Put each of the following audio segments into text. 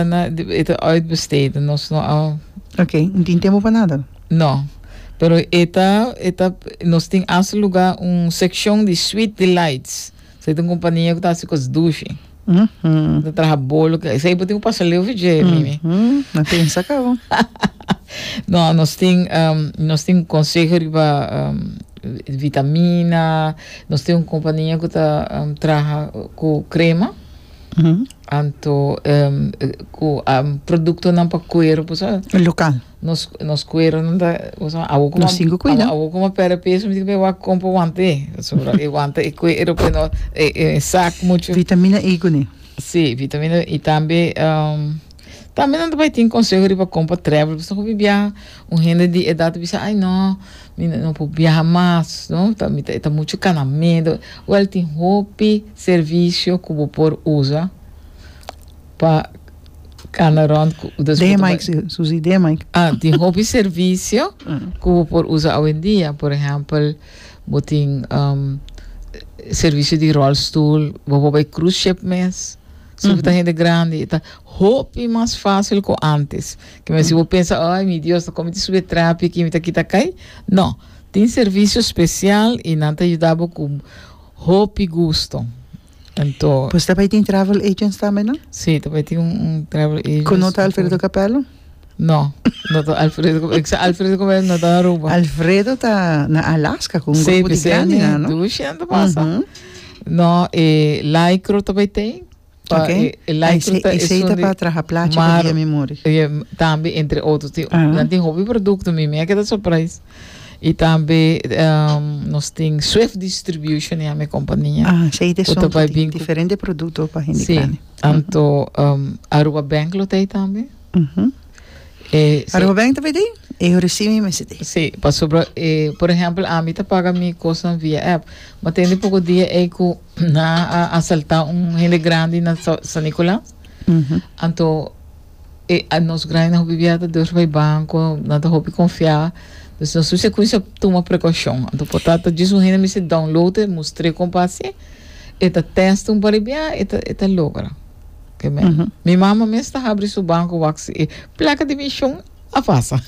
E ta uitbesteed, nos no a. Ok, no tin tempo pa nada. No, pero e ta, e ta, nos tin hasta luga un seccion di Sweet Delights, so e ta un compania cu ta haci cos dushi, Mhm. ta traha bolo, que esey bo tin cu pasa leu fi dje, Mimi. Mhm, na pensa cabo. No, nos tin, ehm, nos tin un conseho riba, ehm, vitamina, nos tin un compania cu ta, ehm, traha cu crema. Anto ku produktonan pa kueru por eso Lokal. nos nos kuerunan ta por eso awo kuma Nos tin ku kuida. awo kuma pèrdè peso mi tin ke wak kompra wante pasobra e wante e kueru pues no e e sak muchu Vitamina E kuné. si vitamina i tambe tambe nan ta bai tin konseho riba kompra trèvel pasobra hopi biaha un hende di edat ta bisa ai no Mi no por biaha mas, no? Ta, mi ta, e ta mucho cana medo. Wel, tin hopi servicio cu bo por usa pa cana rond cu, dus Den, botoba. Mike, su- Susi, den, Mike. Ah, tin hopi servicio cu bo por usa awendia. Por ehempel, bo tin, um, e servicio di rolstoel, bo por bay cruise ship mes. Si bo ta hende grandi, e ta hopi mas facil cu antes. Kima si bo pensa, Ay, mi Dios, ta kon mi ta sube trapi aki, mi ta kita kai? No. Tin servisio spesial i nan ta yuda bo ku hopi gusto. Anto. Pues ta bai tin travel agents tambe, no? Sí, ta bai tin un, un travel agents. Ku no ta Alfredo Capello? No, no ta Alfredo Capello. Kisa Alfredo Capello no ta na Aruba? Alfredo ta na Alaska ku un grupo di grandi nan, no? Sí, p'esei dushi nan ta pasa. No, e Lycro ta bai tin. Pa Ok. e, e Ay, lycra ta e esun seita di pa traha placha pa mar dia mi muri. e, tambe entre otro tin Aha. nan tin hopi producto mi mi a keda surprise y tambe em, nos tin Swift Distribution ya mi compania Ah, seita Ku ta esun bai ku tin bin ku- diferente produkto pa hende sí grandi. anto em, Aruba Bank lo ta ahí tambe Ujú. e sí, Aruba Bank ta bai di? E yo recibe mi mes di. sí, pasobra e por ejemplo ami ta paga mi cosnan via app ma ten di poco dia ey ku Na a asaltá un hende grandi na San Nicolás. Anto e, a nos grandi na hopi biada deur bai banco, na ta hopi confiá. Dus nos su secuencia tuma precaución. Anto por ta ta djis un hende mester download e mustr'é con pa haci. E ta testa un par di bia, e ta e ta logra. Ke men. Mi mama mes ta habri su banco wak si e placa de misión. a pasa.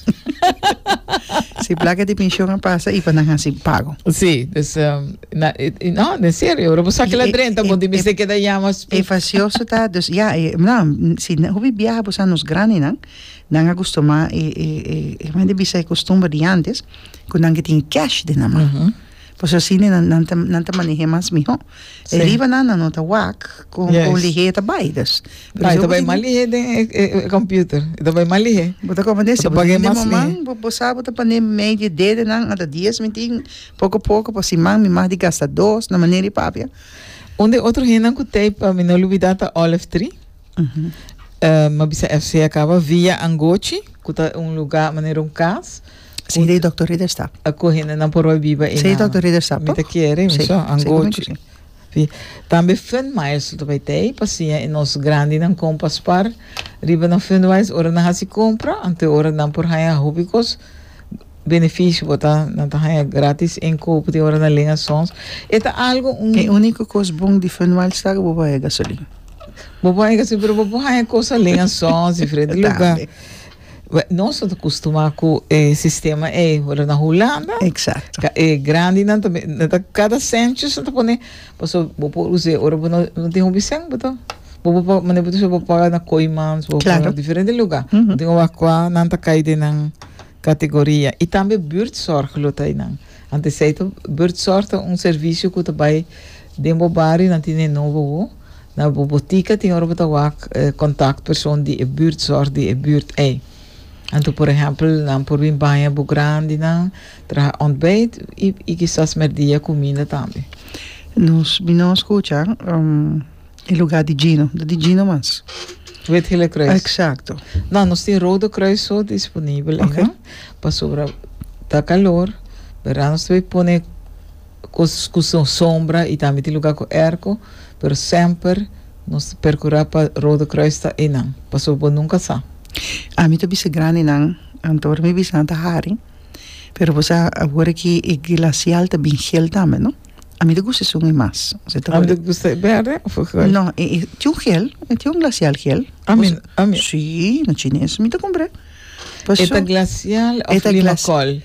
si placa di pensioen a pasa y pa nan haci pago. Sí, dus um, na, e, no, en serio, pero sa que la drenta, bo di se queda llama. E facioso ta, dus ja, e, na, si na hobi viaja bo nos grande nan, nan a gusto ma e e e e man de bisa e costumbre di antes, ku nan ke tin cash de na ma. Uh -huh. Pasobra asina nan ta nan ta maneh'é mas mihó. E riba nan nan no ta wak ku ku lihé ta bai dus. Bai ta bai mas lihé den e e e computer e ta bai mas lihé. Bo ta kòmprendé si bo ta hende muman bo bo sa bo ta pon'é mei di dede nan ata dies mi tin poko poko pa siman mi mas di gasta dos na manera i papia. Un di e otro hendenan ku tei pa mi no lubidá ta Olive Tree. Mi a bisa FCA kaba Via Angochi ku ta un lugá manera un kas. Sí de Doctor Ridder sta. A cu hende nan por a biba y Sí nan. Doctor Ridder sta. Mi ta kere, mi Sí, so, an seguro gochi. que Sí. Tambe Fund Maestro ta bay tey, pa siña e nos grandinan con pa spar riba nan Fund Wise ora nan haci compra, anto ora nan por haña hopi cos beneficio bo ta, nan ta haña gratis en koop di ora nan len a sons. E ta algo un, E unico cos bon di Fund Wise ta cu bo por haña gasolina. bo por haña gasolina, pero bo por haña cos a len a sons, diferente lugar. Tambe. Nos no ta custumá cu e sistema ey, pero na Hulanda, e grandinan ta bini, ta cada sandwiches nan ta pone, pasobra bo por us'e ora bo no tin hopi cen, bo ta, bo por paga, manera bo ta bisa bo por paga na Kooijmans, bo por paga diferente lugar, bo tin oga cua nan ta cay den nan categoria, y tambe buurtzorg lo ta eynan, ante esey ta, buurtzorg ta un servicio cu ta bay den bo bario, nan tin e nobo awo. Na bo botica tin ora bo ta wak contact persoon di e buurt, zorg di e buurt ey. Anto por ehempel nan por bin baña bo grandinan, traha ontbijt y kisas merdia cuminda tambe. Nos bin no scucha e lugar di Gino, ta di Gino mas. Witgele-Croes. Exacto. Na nos tin Rode Kruis so disponibel ey, no? Pasobra ta calor, berda, nos ta bay pone. Cos cu son sombra y tambe tin lugar cu erco, pero semper nos ta percura pa Rode Kruis ta eynan, pasobra bo nunca sa. Ami ta bisa grandenan, anto ora mi bisa nan ta hari, pero bo sa awor aki e glacial ta bin gel tambe, no? Ami ta gusta esun y mas. Ami ta gusta e berde of e gel? No, e tin un gel, e tin un glacial gel. Ami, ami. Si, na chines mi ta cumpra. E ta glacial of lima col?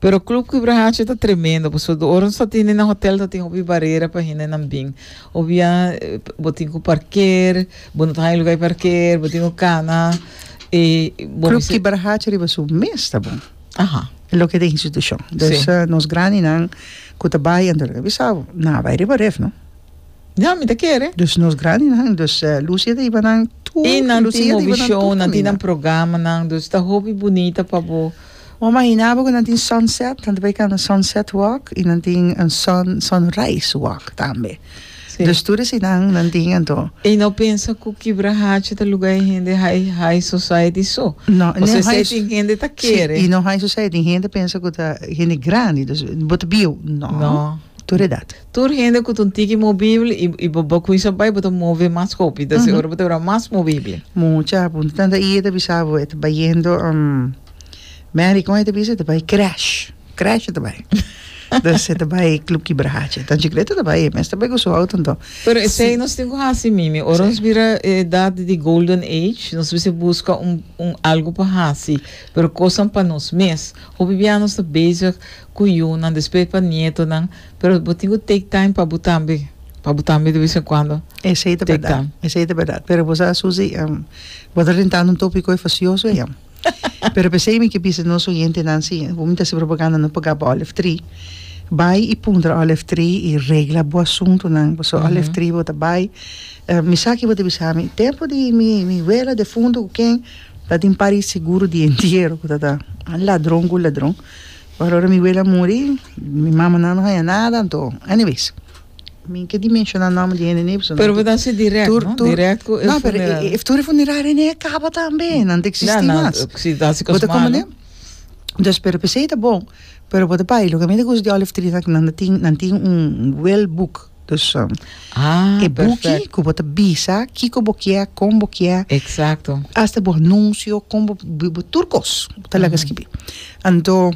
Pero club Quibra Hacha ta tremendo pasobra ora nos ta tin den e hotel ta tin hopi barera pa hendenan bin obia bo tin ku parker bo no ta haña luga di parker bo tin ku kana e bo Club mester Kibar Hacha riba su mes ta bon. aha E loke ta institushon. Si. Dus nos grandinan ku ta bai anto lo ke a bisa bo, nan a bai riba ref no. Ya, mi ta kere. Dus nos grandinan, dus Lucia ta hiba nan tur, Lucia ta hiba nan tur kaminda. I nan tin movi show, nan tin nan programanan, dus ta hopi bunita pa bo. Bo a mahina bo ku nan tin sunset, nan ta bai kanda sunset walk, i nan tin un sun, sunrise walk tambe. Si. Dus tur eseinan nan tin anto. I no pensa ku Kibra Hachi ta luga e hende hai, high society so. No, no high. Esei tin hende ta kere. Si, i no high society, tin hende pensa ku ta hende grandi, dus bo ta bieu, no. No. Tur edat. Tur hende ku ta un tiki mobibel i i bo bo kuinsa bai bo ta move mas hopi ta si ora bo ta bira mas mobibel. Mucha a punta tanta i e ta bisa bo e ta bayendo Mary kon e ta bisa e ta bai cresh cresh e ta bai dus e ta bai club kibracha ta chikletu e ta bai e mes ta bai ku su outo anto Pero esei nos tin ku hasi mimi ora nos bira e edat di golden age nos bisa buska un un algu pa hasi pero kosnan pa nos mes hopi biaha nos ta bezig cu yunan, despues pa nietonan, pero bo tin cu take time pa bo tambe, pa bo tambe de vez en cuando Esey ta take berdad, time. esey ta berdad. Pero bo sa Susi, em, bo ta rentando un topi koe facioso eyem. Pero pesey mi ke bisa nos oyentenan si bo mester hasi propaganda no paga pa Olive Tree, bai y puntra Olive Tree y regla bo asuntonan paso Olive Tree bo ta bai, em, mi sa ki bo ta bisa mi, tempo di mi mi wela defunto cu ken ta tin un par di seguro di entiero cu ta ta ladron cu ladron. Pero ora mi wele a muri mi mama nan no haña nada anto anyways mi ke ni menshona nòmber di hende nip pero bo ta hasi dirèk tur tur dirèk ku e funeral no pero e tur e funeraria ni a kaba tambe nan ta eksistí mas si ta hasi kos malu dus pero p'esei ta bon pero bo ta bai loke mi ta kusa di olive tree nan tin nan tin un well book Dus e buki ku bo ta bisa kiko bo kier, kon bo kier, asta bo anunsio, kon bo bo tur kos bo ta laga skibi. Anto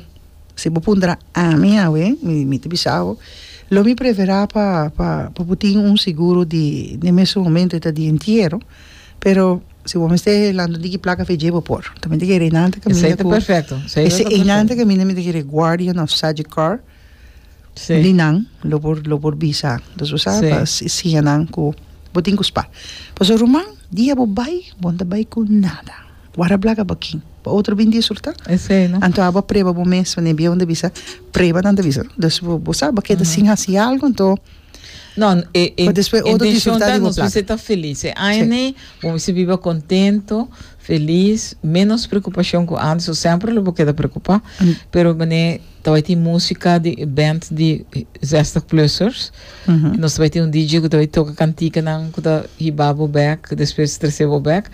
si bo puntra ami awe mi ta bisa bo lo mi preferá pa pa pa bo tin un seguro di den mesun momento e ta di entiero pero si bo mester lanta di ki plaka fedjé bo por tambe ta kere inante kaminda ku esei ta kere guardian of such a car. Di nan lo por lo por bisa dus bo sa pa siña nan ku bo tin ku spa pasobra ruman dia bo bai bo no ta bai ku nada bo a rablaga bakin bo a otro bin disurta anto abo a preba bo mes wende biahunan ta bisa preba nan ta bisa dus bo sa bo a keda sin hasi algu anto pa despues otro disurta di bo plaka. Nos bisa ta felis e aña ne bo bisa biba kontento felis menos prekupashon ku antes o semper lo bo keda prekupa pero mane Ta bai tin musika di e band di Zestig Bluesers. I nos ta bai tin un DJ ku ta bai toka kantikanan ku ta hiba bo bek, despues trese bo bek,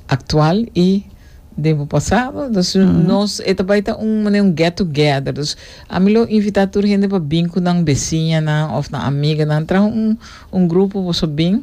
aktual i den bo pasado. Dus nos, e ta bai ta un manera un get together. Dus ami lo invitá tur hende pa bin ku nan besiñanan òf nan amiganan. Traha un grupo boso bin.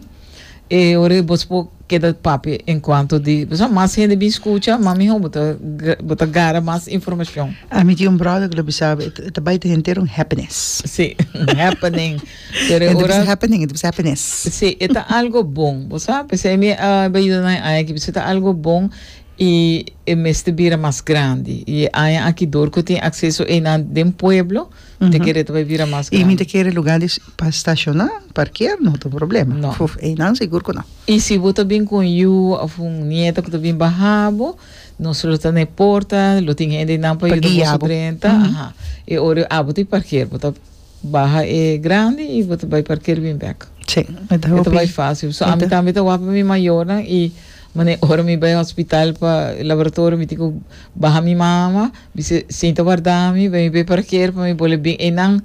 E ora e bos por keda papia en cuanto di pasobra mas hende bin scucha ma miho bo ta bo ta gara mas informacion. A mi tin un brother cu lo bisa e ta bai ta henter un happiness. Si, un happening pero e ora. E no ta bisa happening e ta bisa happiness. Si, e ta algo bon bo sa p'esei mi a bai yuda nan e aña aki p'esei ta algo bon y e mester bira mas grandi y e aña aki dor cu tin acceso einan den pueblo. Mi ta kere tabata bira mas grandi. I mi ta kere lugar di pa staciona, parkea, no ta un problema. No. Uf, einan sigur cu no. I si bo ta bin cu un yu of un nieta cu ta bin baha bo, nos lo ta na e porta, lo tin hende einan pa Pa yuda guia boso bo. drenta. Mhm. Aha. E ora yo abro ta e parker, bo ta baha e grandi i bo ta bay parker bin bek. Sí, mi ta E ta hopi. bay facil. So, ami tambe ta waw pa mi mayornan i. Mane ora mi bai hospital pa laboratorio mi tin cu baha mi mama bis'e sinta warda mi bai mi bai parkeer pa mi bole bin eynan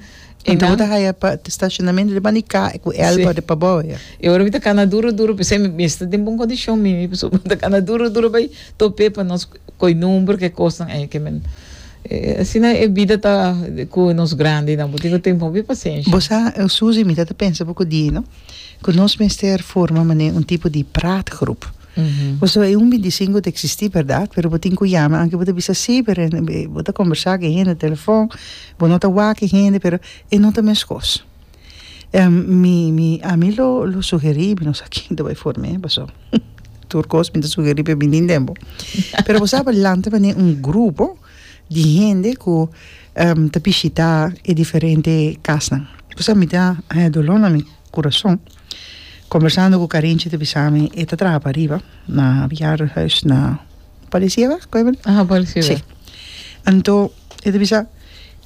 Anto bo ta haya pa stacionamento di mani ka e cu elba de pa bo ya. E ora mi ta cana duro duro pesey mi esta den bon condicion mi mi pasobra mi ta cana duro duro bai tope pa nos coy number ke cosnan ey ke men asina e bida ta cu nos grandinan bo tin cu ten hopi pacencia. Bo sa Susie mi ta ta pensa poco di no. cu nos mester forma manera un tipo di praatgroep. Pasobra e un bintisinco ta existi, berdad, pero bo tin cu yama anke bo ta bisa si, pero bo ta combersa cu e hende telefon, bo no ta wak e hende, pero e no ta meskos. Mi, mi, ami lo, lo sugeri, mi no sa ken ta bay forme, paso tur cos mi ta sugeri pa e bini den bo. Pero bo sa adelante manera un grupo, di hende ku ta bishitá e diferente kasnan. Bo sa mi ta haña doló na mi kurason kombersando ku Karinchi ta bisa mi e ta traha pariba na bejaardenhuis na Palisiewa ku e bali si anto e ta bisa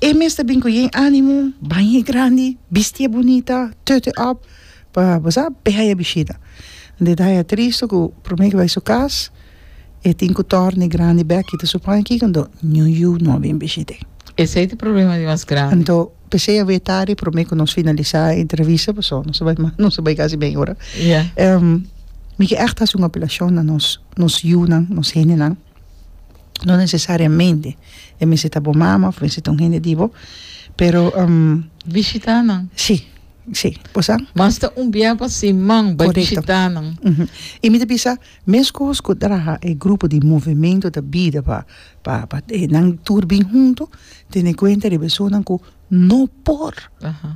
e mes ta bin ku yen ánimo bañe grandi bistié bunita tute òp pa bo sa be haña bishita anto e ta haña triste ku promé ku bai su kas. E tin cu torne grandi bek y ta supoña aki cu anto Niu Yu no a bin bishit'e. Esey ta problema di mas grandi. Anto pesey a wea tardi prome cu nos finalisa e entrevista paso nos a bay mal, nos a bay casi media ora. Ya. Mi ke echt haci un apelacion na nos, nos yunan, nos hendenan, no necesariamente e mester ta bo mama of mester ta un hende di bo, pero Bishita nan. si, si, bo sa. Mas ta un biaha pa siman bay Correcto. bishita nan. Uhu. Y mi ta bisa Mescos cu draha e grupo di movimento ta bida pa pa pa e nan tur bin hunto, tene cuenta di personanan cu no por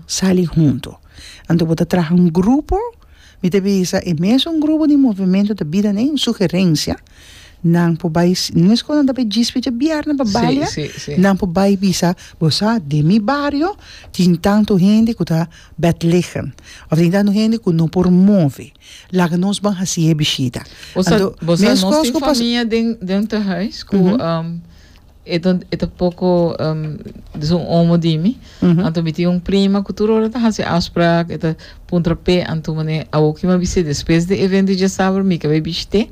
sali hunto. Anto bo ta traha un grupo, mi ta bisa e mesun grupo di movimento ta bida na e sugerencia, nan por bay, mescos nan ta bay djispi djabièrnè pa balia, nan por bay bisa, bo sa den mi bario tin tanto hende cu ta bedleggen, of tin tanto hende cu no por move. Laga nos ban hasi e bishita. Bosa bosa nos tin famia den den tehuis ku e ta e ta poko des un omo di mi anto mi tin un prima ku tur ora ta hasi afsprak e ta puntra p'e anto manera awoki mi a bis'é despues di evento di diasaber mi ka bai bishit'é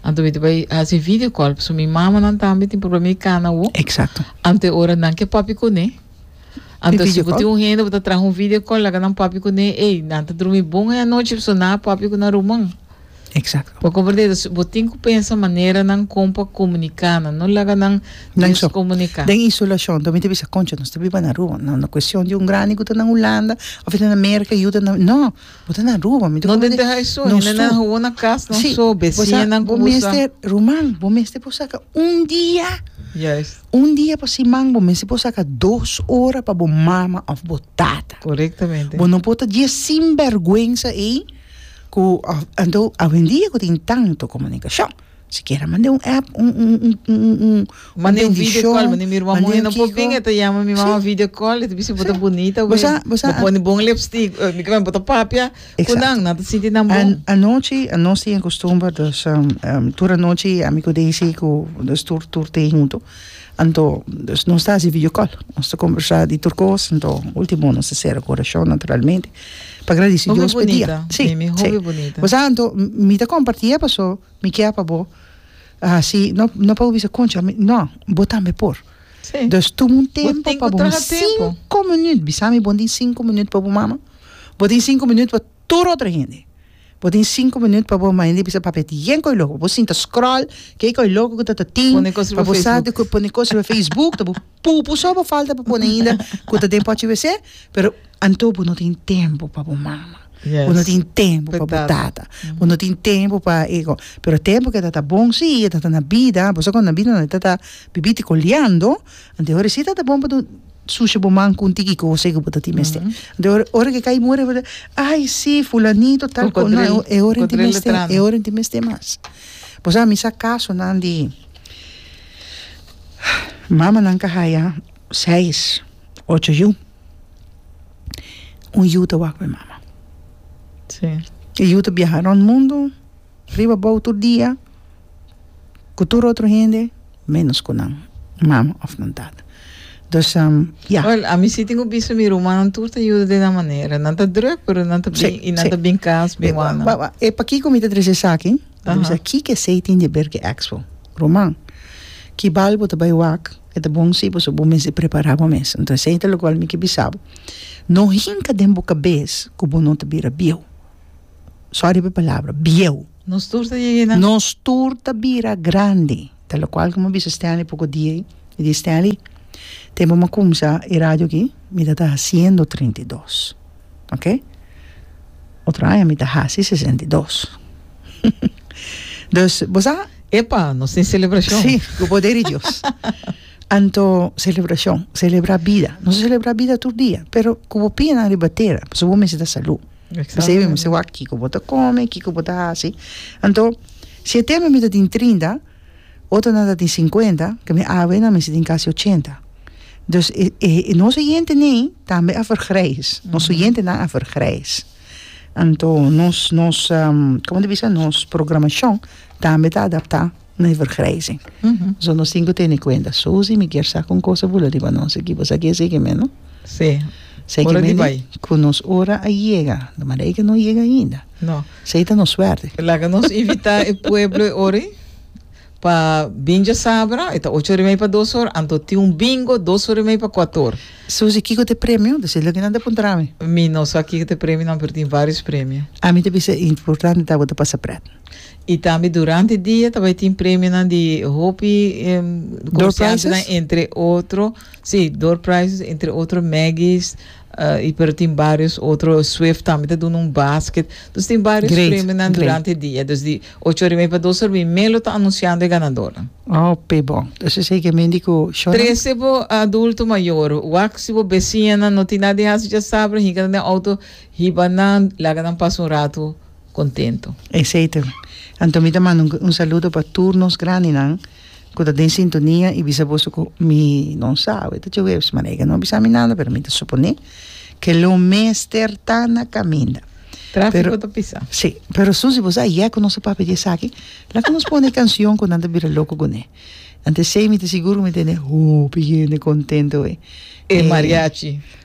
anto mi ta bai hasi video call pasobra mi mamanan tambe tin por bai mi kana awo anto e ora nan ke papia kuné. Anto si bo tin un hende bo ta traha un video call laga nan papia cu ne ey nan ta drumi bon ey anochi pasobra nan a papia cu nan ruman. Exacto. Bo comprende entonces bo tin cu pensa manera nan con pa comunica nan no laga nan descomunica. Den isolacion to mi ta bisa concha nos ta biba na Aruba no na cuestion di un grandi cu ta na Hulanda of e ta na America yuda nan no bo ta na Aruba mi ta No den deha eso nos hende nan hawo na cas nan so besinan cu bo sa. bo mester ruman bo mester por saca un dia. Juist. Un dia pa siman bo mester por saka dos ora pa bo mama of bo tata. Correctamente. Bo no por ta dje sinbergwensa ey cu of anto awendia cu tin tanto comunicacion sikiera mande un app un un un un un Mande un video call mande mi ruman muhe no por bin e ta yama mi mama video call e ta bisti bo ta bonita win bo pone bon lipstick bo ta papia Cu nan, nan ta sinti nan bon? An, anochi, nos tin e costumber, dus, um, um, tur anochi, ami cu Daisy, cu, dus tur, tur te hunto. Anto, dus nos ta haci videocall. Nos ta conversa di tur cos, anto, ultimo nos ta cera cu oracion, naturalmente, pa gradici Hopi Dios pe dia. bonita, Si, mimi, si. hopi bonita. Pues anto, m- mi ta comparti e paso mi kier pa bo haci, no, no pa bo bisa, concha, mi, no, bo tambe por. Dus tuma un tempu pa bo mama, sinku minüt, bisa mi, bo no tin sinku minüt pa bo mama? Bo tin sinku minüt pa tur otro hende, bo tin sinku minüt pa bo mama, hende bisa, pape, tin yen koyo loko, bo sinta scroll, ke koyo loko ku tata tin, pone kos riba facebook, pone kos riba facebook, ta bo pupu so bo falta pa pone ainda ku ta den pochi wc, pero. Anto bo no tin tempu pa bo mama. Yes. Bo no tin tempu pa bo tata. Bo no tin tempu pa e go. Pero tempu ke ta ta bon si, e ta ta na bida. Bo sa kon na bida nan e ta ta bibí tiko liando. Anto e hora si ta ta bon pa bo sushi bo man kun tiki kose ku bo ta tin mester. Anto e hora, ora ke kai muri bo ta, ai si fulanito tal ko. No, e hora tin mester, e hora tin mester mas. Bo sa mi sa kaso nan di mamanan ka haya seis. Ocho yu. Un yu ta wak pa e mama. E yu ta biaha rond mundu, riba bou tur dia, ku tur otro hende, menos ku nan mama òf nan tata. Dus, ya. Wèl, a mi si tin ku bisa mi rumannan tur ta yuda den nan manera. Nan ta drùk, pero nan ta bin i nan ta bin kas bin wak nan. Wak, wak. E pakiko mi ta trese esaki? Lo mi bisa, kiko esei tin di ver ku e èks bo? Ruman, ki bal bo ta bai wak? E ta bon si, pasobra bo mester prepará bo mes. Anto esei ta lokual mi ke bisa bo, No hinka den bo kabes ku bo no ta bira bieu. Sòri pa e palabra, bieu. Nos tur ta yega na. Nos tur ta bira grandi. Ta lokual ku mi a bisa Stanley poko dia ei, mi di, Stanley, tempu mi a kumsa e radio akí, mi ta ta hasiendo trinta i dos. ok otro aña mi ta hasi sesenta i dos dus bo sa epa nos tin celebracion si cu poder di Dios anto celebracion celebra bida nos a celebra bida tur dia pero cu bo pia nan riba tera pasobra bo mester ta salud pasobra bo mester wak kico bo ta come kico bo ta hasi anto si e tempo mi ta tin trinta Otronan ta tin sinkuenta, ke mi abuenan mester tin kasi ochenta. Dus, e, e, e nos oyentenen tambe a vergrijs. Nos oyentenan a vergrijs. Anto, nos, nos, komo ta bisa? Nos programashon tambe ta adaptá na e vergrijzing. So, nos tin ku tene kuenta. Susi, mi kier sa ku un kos ta bula riba nos aki. Bo sa ke eseki men, no? Sí. Ora di bai. Ku nos ora a yega. Lo mara e ke no a yega ainda. No. Sei ta nos suerte. Laga nos invita e pueblo e ori pa bin diasabra, e ta ocho or y mei pa dos or, anto tin un bingo dos or y mei pa kuato or. Susi, kiko ta e premio? Deci loke nan ta puntra mi. Mi no sa kiko ta e premio nan, pero tin varios premio. Ami ta bisa e importante ta bo ta pasa pret. Y tambe durante dia ta bay tin premio nan di hopi comerciantenan entre otro, si, door prizes entre otro Maggie's, Y pero tin barios otro, Swift tambe ta duna un basket. Dus tin barios Great, premionan great. durante e dia. Dus di ocho oriba y pa dos oriba y Melo ta anunciando e ganadornan. Hopi bon. Dus esei ke men di ku shownan. Trece bo adulto mayor, wak si bo besiñanan no tin nada di hasi dja sabra, hinka nan den auto, hiba nan, laga nan pasa un ratu contento. Esei ta. Anto mi ta manda un saludo pa tur nos grandinan. ku ta den sintonia i bisa boso ku mi no sa awe ta Jueves maná e ka no bisa mi nada pero mi ta suponé ke lo mester ta na kaminda. Trafiko ta pisa. Sí, pero su si bo sa yè ku nos ta papia di esaki laga nos pone e kansion ku nan ta bira loko ku ne. Ante esei mi ta sigur ku mi tene hopi hende kontento awe. E mariachi.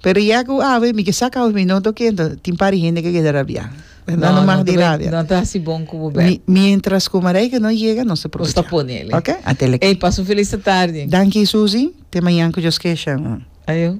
Pero ya cu awe mi ke sa causa mi no ta oke enton tin par di hende ke keda rabia. No no mag di rabia. No ta haci bon cu bo bèk. Mientras cu Marijke no yega nos ta probecha. Nos ta pone li. Oke a teleki. Ey pasa un felis ta tardi. Danki Susie te mañan cu Dios kesh. Ayo.